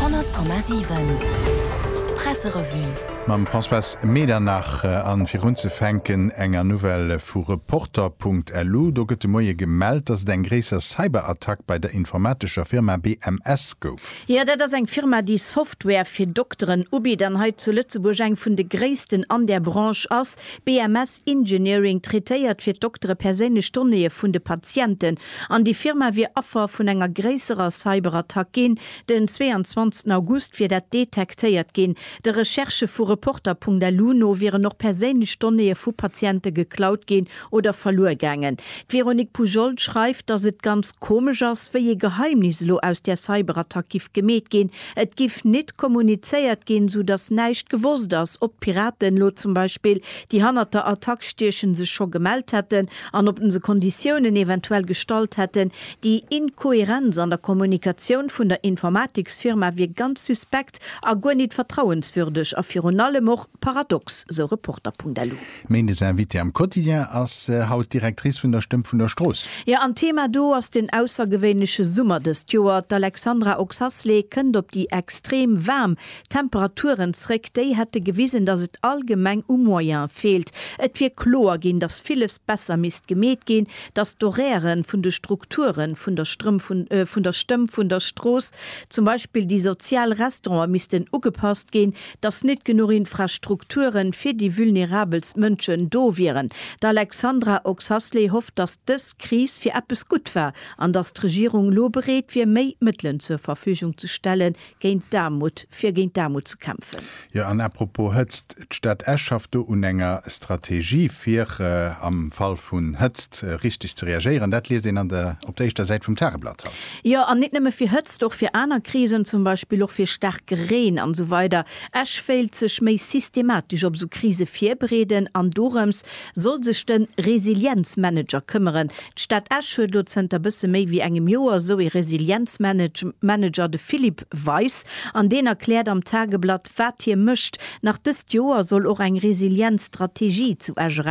100,7 Presserevue. Mam Françoise Medernach an virunzefänken enger Nouvelle vu Reporter.lu. Do gëtt de Moie gemellt, datt et eng gréisser Cyberattack bei der informatescher Firma BMS gouf. Jo, dat ass eng Firma, déi Software fir Dokteren ubitt an hei zu Lëtzebuerg eng vun de gréissten an där Branche ass. BMS Engineering traitéiert fir d'Doktere perséinlech Donnéeë vun de Patienten. an déi Firma wier Affer vun enger gréisserer Cyberattack ginn. Den 22 August wier dat detektéiert ginn. De Recherchë vu Reporter.lu no wieren och perséinlech Donnéeë vu Patiente geklaut ginn oder verluer gaangen. D'Véronique Poujol schreift, datt et ganz komesch ass, wéi ee Geheimnis elo aus där Cyberattack giff gemeet ginn. Et giff nit kommunizéiert ginn, sou datt näischt gewosst ass, ob d'Piraten elo zum Beispill, déi hannert der Attack stiechen, sech scho gemellt hätten an ob se Konditiounen eventuell gestallt hätten, déi Inkohärenz an der Kommunikatioun vun der Informatiksfirma wier ganz suspekt a guer nit vertrauenswürdeg a virun allem och paradox, sou Reporter.lu. Méindes Invitée am Quotidien ass haut d'Directrice vun der Stëmm vun der Strooss. Jo, an Thema do ass den aussergewéinleche Summer dëst Joer. D'Alexandra Oxasley kënnt op déi extrem waarm Temperaturen zréck, déi hätte gewisen, datt et allgemeng u Moyen feelt. Et wier kloer ginn, datt villes besser misst gemeet ginn, datt d'Horairë vun de Strukturen, vun der Strëmm, vun der Stëmm, vun der Strooss, zum Beispill déi sozial Restauranten, missten ugepasst ginn, datt nit genuch Infrastrukture fir déi vulnerabelst Mënschen do wieren. D'Alexandra Oxasley hofft, datt dës Kris fir eppes gutt war an datt d'Regierung lo bereet wier, méi Mëttelen zur Verfügung ze stelle géint d'Aarmut, fir géint d'Aarmut ze kämpfen. Jo, an apropos Hëtzt, d'Stad Esch schafft do un enger Strategie fir am Fall vun Hëtzt richteg ze reagéieren. Dat liest een an der op der éischter Säit vum Tageblatt haut. Jo, an nit nëmme fir Hëtzt, och fir aner Krisen, zum Beispill och fir staarke Reen an esou weider. Esch wéilt sech méi systematesch op esou Krise virbereeden an dorëms soll sech de Resilienzmanager këmmeren. D'Stad Esch huet elo zënter bësse méi wéi engem Joer esou ee Resilienzmanager, de Philippe Weis, an deen erkläert am Tageblatt, wat hie mécht. Nach dëst Joer soll och eng Resilienzstrategie zu Esch erauskommen.